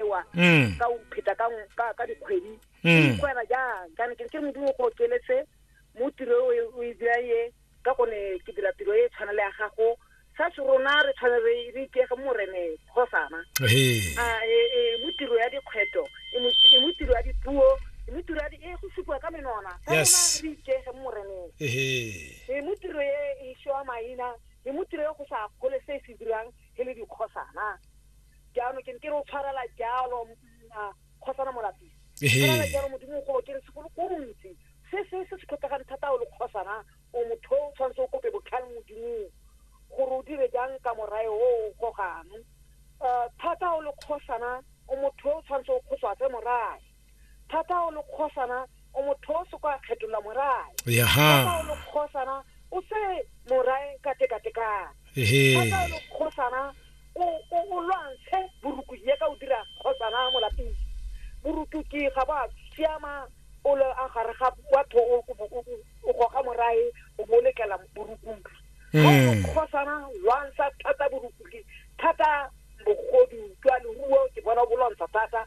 ewa mm. ka o pheta ka ka dikgwedi mm. kwena jang kana ke ke modimo go keletse mo tiro e o e dira ye ka gone ke dira tiro e tshwana le ya gago sa se rona re tshwane re re ikege morene kgosana a e, e mo tiro ya dikgweto e mo e tiro ya dipuo e mo tiro ya e go supiwa ka menona sa rona re ikege moreneng e mo tiro e e shoa maina e mo tiro e go sa gole se se dirang e le dikgosana jaanong ke ne ke re o tshwarela jalo mma kgosana molapisi Ehe. tshwarela jalo modimo go ke re segolo ko ntsi se se se se tlhokegang thata o le kgosana o motho o tshwanetse o kope botlhale modimong gore o dire jang ka morae o o gogang Eh, thata o le kgosana o motho o tshwanetse o kgoswatse morae thata o le kgosana o motho o soko a kgetola morae thata o le kgosana o se morae ka tekatekana thata o le kgosana o lwantshe boruku ye ka o dira kgosana mo lapeng boruku ke ga ba siama o le a gare ga batho o goga morae o bo lekela borukung hmm. kgosana lwantsha thata borukuki thata bogodu jwa leruo ke bona o bolwantsha thata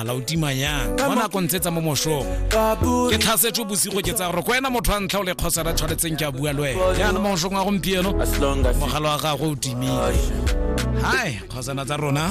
ala o tima yang mo nako ntse tsa mo moshong ke tlhasetswe bosigo ke tsaya gore ko ena motho wa ntlha o le kgosa ra tshwanetseng ke a bua le wena yana mo moshong wa gompieno mogalo wa gagwe o timile hai kgosana tsa rona